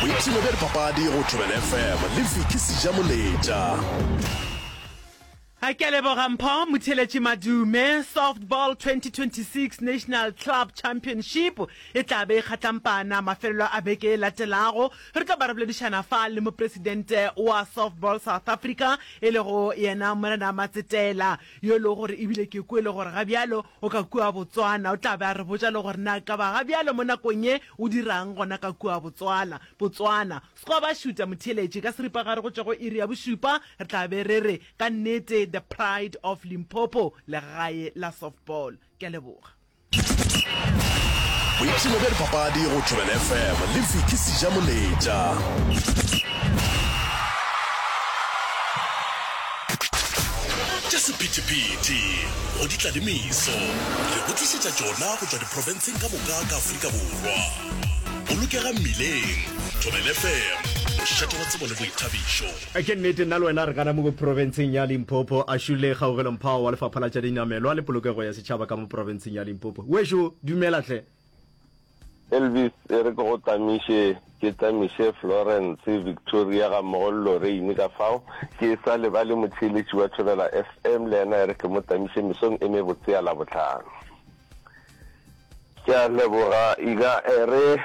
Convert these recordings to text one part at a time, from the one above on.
boipshino bja dipapadi go thobela fm le viki seja moletša A ke a leboga Mpho Motheletši Madume. Softball 2026 National Club Championship e tla be e kgatlampana mafelelo a beke e latelago. Re tla ba re boledišana fa le mopresidente wa Softball South Africa e lego yena Morena Matsetela. yo e lego gore e bile ke kwele gore ga bjalo o ka kua Botswana, o tla be a re botša le gore na ekaba ga bjalo mo nakong ye o dira'ng gona ka kua Botswana. Botswana. Sekgoba šuta motheeletši ka seripagare go tšwa go iri ya bošupa re tla be re re ka nnete the pride of Limpopo legae la softball. Ke a leboga. boipshino bja dipapadi go tšwebel fm le viki seja moletša tša sephethephethe go di tlalemiso re go tlišetša tšona go tšwa diprofenseng ka moka ka aforika borwa bolokega mmileng tšwebel fm mošate wa tsebo le boithabišo Ke nnete, nna le wena re ka namugo profenseng ya Limpopo, a šulle kgaugelo-mphao wa Lefapha la tša Dinamelwa le Polokego ya Setšhaba ka mo profenseng ya Limpopo. Wešo, dumela hle. Elvis, e re ke go tlamiše, ke tlamiše Florence, Victoria gammogo le Lorraine ka fao. Ke e sa lebale motheeletši wa Thobela FM, le yena e re ke mo tlamiše mesong e mebotse ya Labohlano. ke a leboga ika ere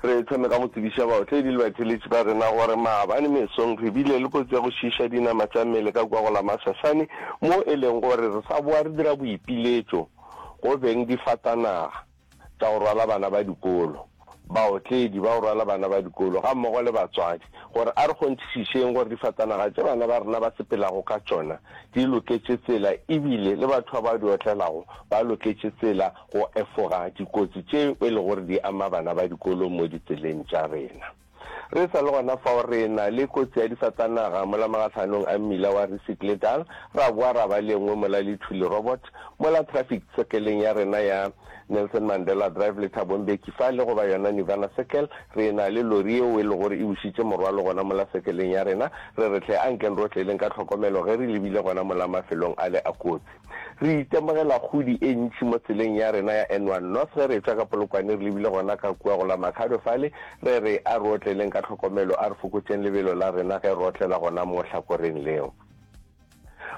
re thome ka go tsebiša baotledi le batheletši ba rena gore maabane mesong re bile le kotsi ya go šiša dinama tša mmele ka kwa go la masasane mo e leng gore re sa boa re dira boipiletšo go beng difatanaga tša go rwala bana ba dikolo baotledi, ba go rwala bana ba dikolo gammogo le batswadi gore a re kgonthišišeng gore difatanaga tše bana ba rena ba sepelago ka tšona di loketše tsela e bile le batho ba ba di otlelago ba loketše tsela go efoga dikotsi tše e lego gore di ama bana ba dikolo mo ditseleng tša rena. Re sa le gona fao re e-na le kotsi ya difatanaga mola magahlhanong a mmila wa Risikledal, ra boa ra ba le e nngwe mola Lithuli Robot, mola traffic circle-eng ya rena ya Nelson Mandela Drive le Thabo Mbeki fa le go ba yona Nirvana Circle, re e-na le lori yeo e le gore e bušitše morwalo gona mola circle-eng ya rena. Re re hle, ankeng rohle leng ka tlhokomelo ge re lebile gona mola mafelong ale a kotsi. Re itemogela kgodi e ntši mo tseleng ya rena ya N one North ge re etšwa ka Polokwane re lebile gona ka kua go la Makhado fale, re re a re otleleng ka tlhokomelo, a re fokotšeng lebelo la rena ge re otlela gona mo hlakoreng leo.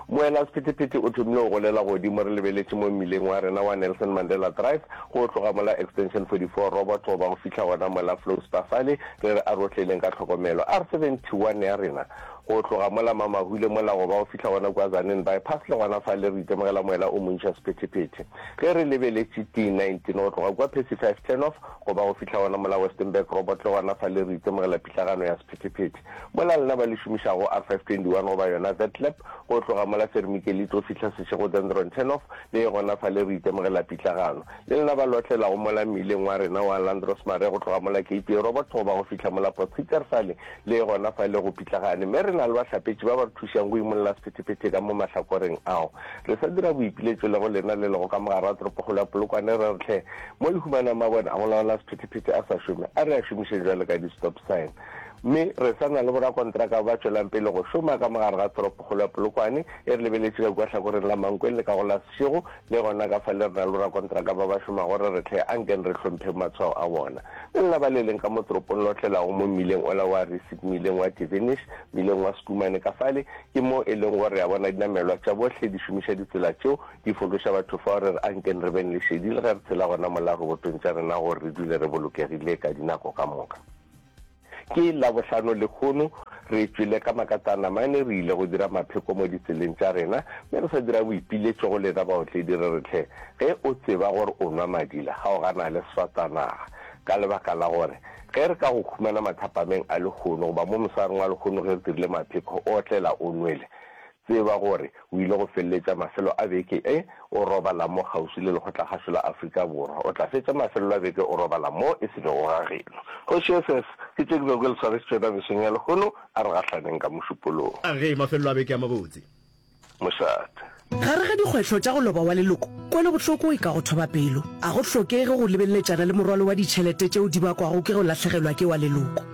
Moelasphetephete o thomile go golela godimo re lebeletše mo mmileng wa rena wa Nelson Mandela Drive, go tloga mola Extension 44 Robot go ba go fihla gona mola Flow Spa fale, re re a re otleleng ka tlhokomelo, a re 71 ya rena. Go tloga mola Mamahule mola go ba go fihla gona kua Zanini Bypass le gona fale re itemogela moela o montši wa sephethephethe. Ge re lebeletše T nineteen go tloga kua Percy Five Turnoff go ba go fihla gona mola Westenberg Robot le gona fale re itemogela pitlagano ya sephethephethe. Mola lena ba le šomišago R five twenty one goba yona Vetlab go tloga mola Sermikelli tlo fihla Seshego Dendron Turnoff le ye gona fale re itemogela pitlagano. Le lena ba lotlelago mola mmileng wa rena wa Landros Mare go tloga mola KPA Robot go ba go fihla mola Potgieter fale Le gona fa e le go pitlagane, mme re na le bahlapetši ba ba re thušang go imolla sephetephete ka mo mahlakoreng ao. Re sa dira boipiletšo le go lena le lego ka mogare wa toropokgolo ya Polokwane re re hle mo le humanang mabone a go laola sephetephete a sa šome, a re a šomišeng bjalo ka di-stop sign. Mme re sa na le borakontraka ba ba tšwelang pele go šoma ka mogare ga toropokgolo ya Polokwane e re lebeletše ka kua hlakoreng la Mankweng le ka go la Seshego Le gona ka fa le rena le borakontraka ba ba šomago re re hle, ankeng re hlompheng matshwao a bona. Le lena ba le leng ka mo toropong le otlelago mo mmileng ola wa Risip, mmileng wa Tivinish, mmileng wa Schoeman ka fale, ke mo e lego gore re a bona dinamelwa tša bohle di šomiša ditsela tšeo, di fološa batho fao. Re re ankeng re beng le šedi le ge re tshela gona mola robotong tša rena gore re dule re bolokegile ka dinako ka moka. Ke Labohlano lekhono re tšwile ka makatana mane, re ile go dira mapheko mo ditseleng tša rena, mme re sa dira boipiletšo go lena baotledi re re tlhe. Ge o tseba gore o nwa madila, kgaogana le swatanaga, ka lebaka la gore ge re ka go khumana mathapameng a lekhono goba mo mosareng wa lekhono ge re dirile mapheko, o otlela o nwele, Tseba gore o ile go feleletša mafelo a beke e o robala mo kgauswi le Lekgotlakgašo la Afrika Borwa. O tla fetša mafelelo a beke o robala mo e se bego ga geno. Kgoši SS, ke tše ke bego ke le swarešitše yona beseng ya lehono, a re gahlaneng ka mošupolong. A re, Mafelelo a beke a mabotse. Mošate. Gare ga dikgwetlho tša go loba wa leloko, kwelobohloko e ka go thoba pelo. A go hlokege go lebeleletšana le morwalo wa ditšhelete tšeo di bakwago ke go lahlegelwa ke wa leloko.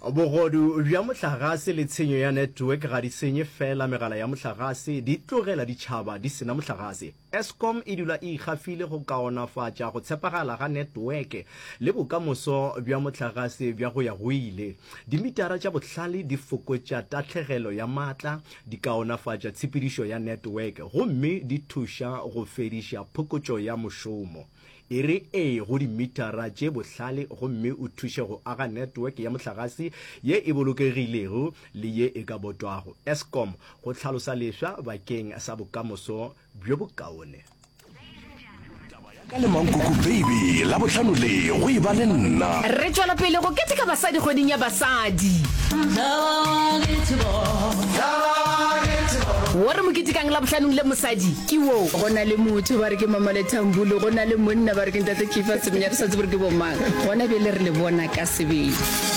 Bogodu bja mohlagase le tshenyo ya network ga di senye feela megala ya mohlagase, di tlogela ditšhaba di sena mohlagase. Eskom e dula e ikgafile go kaonafatša go tshepagala ga netweke le bokamoso bja mohlagase bja go-ya-go-ile. Dimitara tša bohlale di fokotša tahlegelo ya maatla, di kaonafatša tshepedišo ya netweke gomme di thuša go fediša phokotšo ya mošomo. E re ee go dimitara tše bohlale gomme o thuše go aga network ya mohlagase ye e bolokegilego le ye e ka botwago, Eskom, go hlalosa lefsa bakeng sa bokamoso bjo bokaone. Ka le Mankoko Baby Labohlano le, go e ba le nna. Re tšwela pele go keteka basadi kgweding ya basadi. Wo re mo ketekang Labobhlanong le mosadi. Ke wo. Go na le motho ba re ke Mamole Thambulu, go na le monna ba re ke Ntate Kifa Semenya, re sa tsebe re ke bomang. Gona bjale re le bona ka sebele.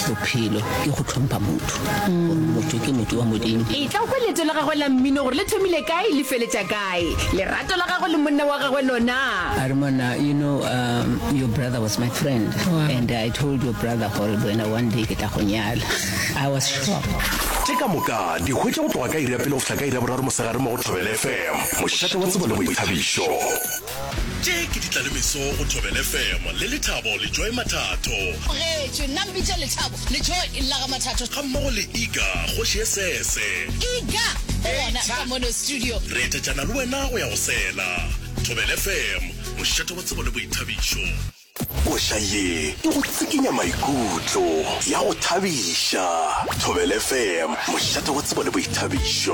Bophelo ke go hlompha motho, gore motho ke motho wa Modimo. Etla o kwe leeto la gagwe la mmino gore le thomile kae le feletša kae. Lerato la gagwe le monna wa gagwe lona. A re, Monna, you know, um, your brother was my friend and I told your brother gore le wena one day ke tla go nyala. I was shocked. Tše ka moka di hwetša go tloga ka iri ya pele go fihla ka iri ya boraro mosegare mo go Thobela FM, mošate wa tsebo le boithabišo. Tše ke ditlalemeso go Thobela FM le Lethabo le Joy Mathatho. Bogetše, nna mpitša Lethabo le Joy e lla ga Mathatho. Ga mmogo le Iga, kgoši e sese. Iga o gona ka mono studio. Re etetšana le wena go ya go sela. Thobela FM, mošate wa tsebo le boithabišo. Koša ye e go tsikinya maikutlo, ya go thabiša. Thobelfm, mošate wa tsebo le boithabišo.